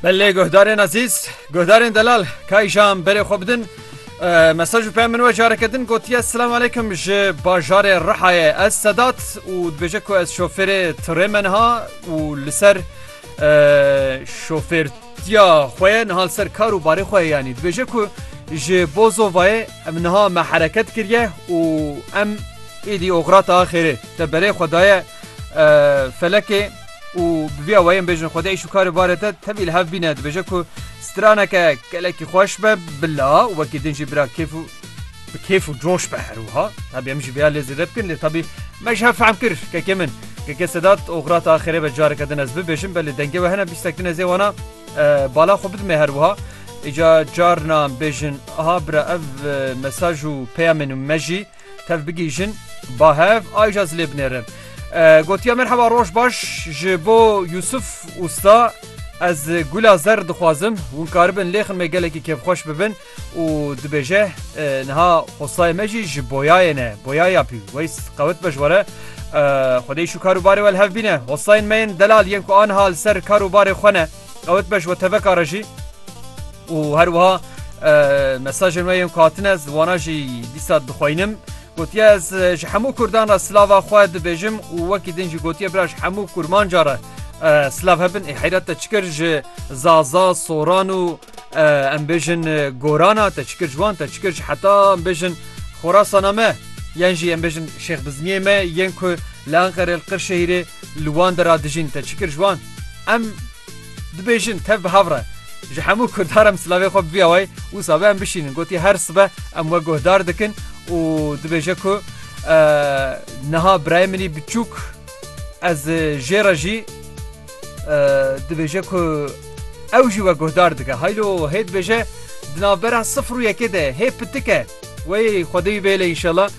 Belê guhdarên ezîz guhdarên delal kayîjan berê xwe bidin mesaj û peyam min we careke din gotiye silam aleykum ji bajarê Rihayê ez sedat û dibêje ku ez şofêrê tirê me niha û li ser şofêrtiya xwe ye niha li ser kar û barê xwe ye yanî dibêje ku ji bozovayê em niha me hereket kiriye û em êdî oxirata xêrê te berê xwe daye felekê û bi vî awayê em bêjin Xwedê îş û karê barê te tevî li hev bîne dibêje ku straneke gelekî xweş be bila û wekî din jî bira kêf û bi kêf û coş be her wiha tabî em jî vêya lê zêde bikin lê tabî me ji hev fehm kir kekê min kekê Sedat Ograta axirê be careke din ez bibêjim belê dengê we hene bîstek din ez ê wana bala xwe bidimê her wiha îca carna em bêjin aha bira ev mesaj û peyamên me jî Tev bigihîjin ba hev ayja zilê binêrin. Gotiya merheba roj baş ji bo Yusuf Usta ez gula zer dixwazim hûn karibin lêxin me gelekî kêfxweş bibin û dibêje niha xosayê me jî ji boyayê ne boyaya pî weys qewit be ji were xwedê şû karûbarê wel hev bîne hosayên me yên delal yên ku aniha li ser karûbarê xwe ne Dawet be ji we teveka re jî û her wiha mesajên we yên ku hatine ez wana jî dîsa dixweynim. Gotiye ez ji hemû Kurdan re silava xwe dibêjim û wekî din jî gotiye bira ji hemû kurmanca re silav hebin ê heyret te çikir ji Zaza, Soran û em bêjin Gorana te çikir ji wan te çikir ji heta em bêjin Xorasana me yan jî em bêjin Şêxbizniyê me yên ku li Enqerê li Qirşehîrê li wan de re dijîn te çikir ji wan. Em dibêjin tev bi hev re. Ji hemû kurdan re em silavê xwe bi vî awayî wisa be em bişînin. Gotiye her sibe em we guhdar dikin û dibêje ku niha birayê min î biçûk ez jê re jî dibêje ku ew jî we guhdar dike. Haylo hê dibêje di navbera sifir û yekê de hê pitike. Wê xwedê wî bêle înşallah.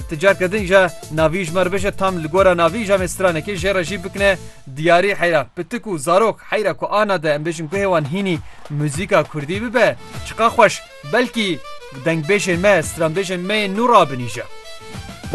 Ticar kedin ja navî ji me re bije tam li gora navî ja me stranekê jê re jî bikine diyarî heyra pitik û zarok heyra ku ana de em bêjin guhê wan hînî muzîka kurdî bibe çiqa xweş belkî dengbêjên me stranbêjên me yên nû rabinîje.